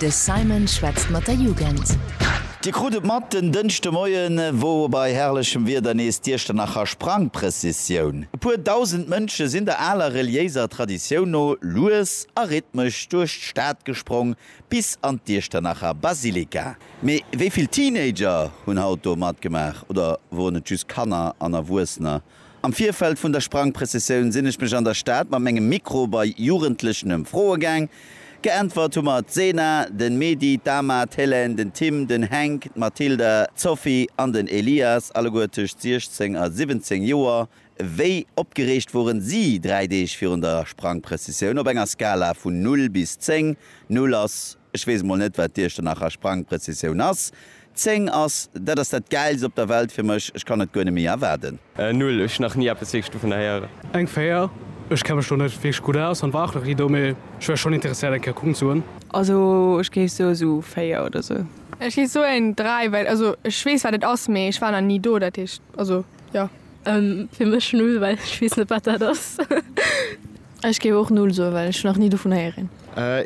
De Simon schwätzt mat der Jugend. Dir krut et mat, den Dënschdemoien wor bei herrlechem Wieder nees d'Iechternacher Sprangprëssissioun. E puer dausend Mënsche sinn der aler reliéiser Traditioun no lues a rhythmesch duerch d'Stad gesprong bis an d'Iechternacher Basilika. Mee wéi vill Teenager hunn haut do matgemaach oder woren et just Kanner an Erwuessener? Am Virfeld vun der Sprangprëssessioun sinn ech mech an der Stad mat mengem Mikro bei Jugendlechen ëmfroe gaang. Geäntwert hu mer d'Sena, den Medy, d'Ama, d'Helène, den Tim, den Hänk, d'Mathilda, d'Sophie an den Elias, alleguer tëscht 16 a 17 Joer. Wéi opgereegt woren si 3 Deeg virun der Sprangprëssessioun? Op enger Skala vun 0 bis 10, 0 ass Ech weess emol net, wat d'Iech Dernacher Sprangprëzessioun ass. Zéng ass, dat ass dat Gäilst op der Welt fir mech. Ech kann et guer net méi erwaarden. Null, ech hu nach ni eppes wierklech dovunner héieren. Eng Véier, ech kenne mech do net wierklech gutt aus an war och nach ni do, mee ech wär schonn interesséiert, eng Kéier kucken ze goen. Also ech géif soe sou véier oder sou. Ech géif soen dräi, well also ech weess, wat et ass, mee ech war nach ni do. Dat heescht, also jo. Fir mech null, well ech weess net, wat dat ass. Ech géif och null soen, well ech nach ni dovun héieren.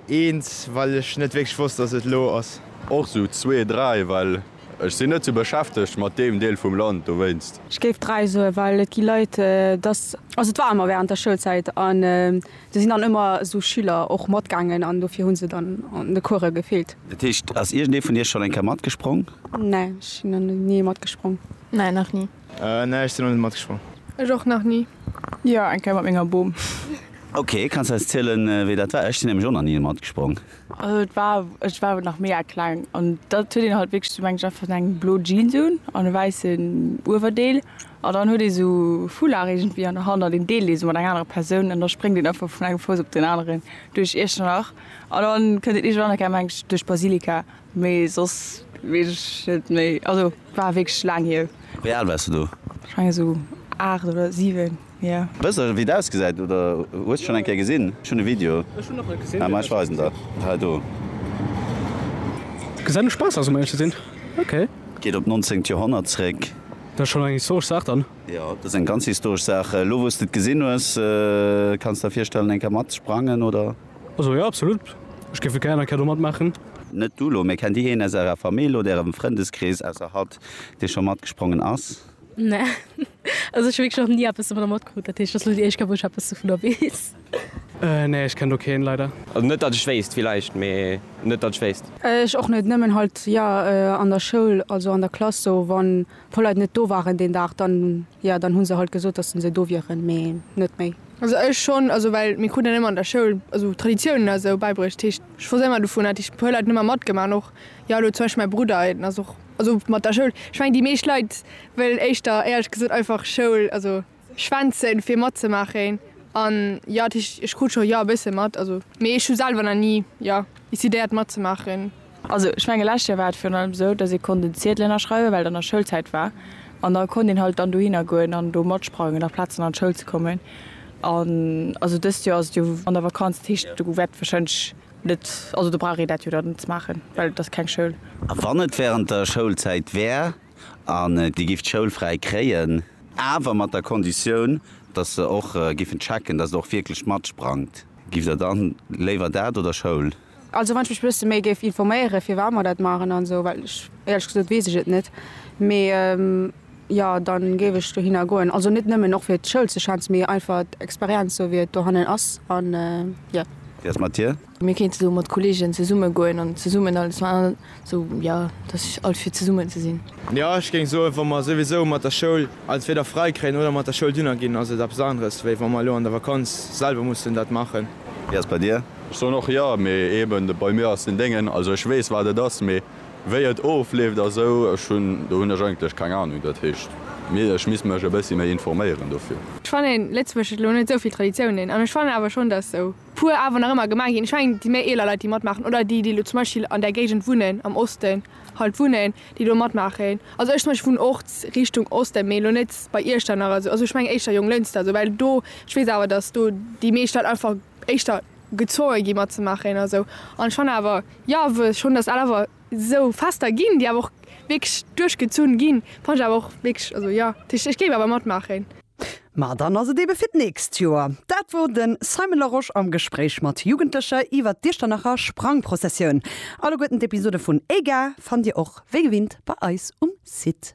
Eens, well ech net wierklech wosst, dass et elo ass. Och sou zwee, dräi, well ech sinn net sou beschäftegt mat deem Deel vum Land dowéinst. Ech géif dräi soen, well et gi Leit, dass. Also et war ëmmer während der Schoulzäit an do sinn dann ëmmer esou Schüler och matgaangen an dofir hu se dann an de Course gefeelt. Dat heescht, ass iergendee vun Iech schonn eng Kéier matgesprong? Nä, ech sinn nach ni matgesprong. Nä, nach ni. Nee, ech sinn nach net matgesprongen. Ech och nach ni. Jo, eng Kéier mat menger Bom. Ok, kanns de eis zielen wéi dat war? Ech sinn nämlech och nach ni matgesprongen. Also et war, ech war nach mega kleng an da huet een halt wierklech, meng ech, einfach sou eng blo Jeans un an e wäissen Uewerdeel an dann huet ee sou Foulard iergendwéi an der Hand an deen deelt ee sou mat enger anerer Persoun an da spréngt een einfach vun engem Fouss op den aneren duerch Iechternach an dann kënnt een iergendwann, meng ech, duerch d'Basilika. Mee soss wees ech net méi, also war wierklech laang hier. Wéi al wars de do? Ech mengen esou 8 oder 7, jo. Wëss de wéi et ausgesäit oder hues et schon eng Kéier gesinn? Ech hunn e Video, mä ech weisen der et hei do. Gesäit no Spaass aus, um éierlech ze sinn. Ok. Geet op d'nonzéngt Joerhonnert zréck. Dat ass schonn eng historesch Saach dann. Jo, dat ass eng ganz historesch Saach. Elo wou s de et gesinn hues, kanns de der virstellen eng Kéier matsprangen oder? Also jo, absolut. Ech géif et gären eng Kéier do matmaachen. Net du lo, mee kennt dir een aus ärer Famill oder ärem Frëndeskrees ausser hatt, dee scho matgesprongen ass? Nee. Also ech hu wierklech nach ni eppes dovunner matkrut, dat heescht et ass lo déi éischt Kéier, wou ech eppes dovunner weess. Nee, ech kenn do keen, leider. Also net datt ech wéisst, villäicht, mee net datt ech wéisst. Ech och net, nëmmen halt jo an der Schoul, also an der Klass sou, wann e puer Leit net do waren deen Dag, dann jo, dann hu se halt gesot, datt se do wieren, mee net méi. Also ech schon, also well mir kruten emmer an der Schoul also Traditiounen a sou beibruecht, heescht ech wosst emmer dovun, hat heescht puer Leit hun emmer matgema an och jo elo zum Beispill mäi Brudder en ass och also mat der Schoul, ech mengen déi meescht Leit wëllen éischter éierlech gesot einfach Schoul also schwänzen fir matzemaachen an jo heescht ech krut scho jo e bësse mat also mee ech hu selwer na ni jo décidéiert matzemaachen. Also, ech menge lescht Joer war et virun allem esou, dass ee konnt en Ziedel ënnerschreiwen, well dann nach Schoulzäit war. An da konnt een halt dann dohinner goen an do matsprangen, nach Plaz dann an d'Schoul ze kommen. An also dëst Joer ass et jo an der Vakanz, dat heescht do wäert warscheinlech net, also do brauch ee dat jo dann net ze maachen, well et ass keng Schoul. A wann et während der Schoulzäit wär an Dir gifft d'Schoul fräi kréien, awer mat der Konditioun, dass se och giffen checken, dass et och wierklech matsprangt, giff Der dann léiwer dat oder Schoul? Also wann ech mech bësse méi géif informéiere firwat mer dat maachen an esou, well ech éierlech gesot weess ech et net, mee jo dann géif ech dohinner goen, also net nëmmen och fir d'Schoul ze schwänzen, mee einfach d'Experienz esou wéi et dohannen ass an jo. Wéi ass mat dir? Mir kéinte do mat Kollegen zesumme goen an zesummen alles man. So jo, dass ech alt fir zesummen ze sinn. Jo, ech géing soen, wa mer souwisou mat der Schoul entweder fräi kréien oder mat der Schoul dunner ginn, ass et eppes aneres, wéi wa mer elo an der Vakanz selwer mussen dat maachen. Wéi ass et bei dir? Ech soen och jo, mee eben bei mir ass den Déngen, also ech weess wat et ass, mee wéi et ofleeft a sou, ech hunn, do hunn ech eigentlech keng Ahnung. Dat heescht, ech misst mech e bëssi méi informéieren dofir. Ech fannen, Lëtzebuerg huet elo net esou vill Traditiounen an ech fannen awer schonn, dass sou. puer awer nach ëmmer gemaach ginn. Ech mengen, déi méi eeler Leit, déi matmaachen, oder déi, déi elo zum Beispill an där Géigend wunnen, am Osten halt wunnen, déi do matmaachen. Also ech zum Beispill wunnen och Richtung Osten, mee elo net bei Iechternach esou. Also ech mengen éischter Jonglënster esou, well do, ech weess awer, datt do déi meescht Leit einfach éischter gezwonge gi matzemaachen a sou. An ech fannen awer, jo, wëll schonn, datt al awer esou Fester ginn, déi awer och wierklech duerchgezunn ginn, fannen ech awer och wierklech, also jo, ech géif awer matmaachen. Ma dann ass et ebe fir d'nächst Joer. Dat wor den Simon Larosche am Gespréich mat Jugendlecher iwwert d'Iechternacher Sprangprozessioun. Alleguerten d'Episode vun Ega fannt dir och wéi gewinnt bei eis um Site.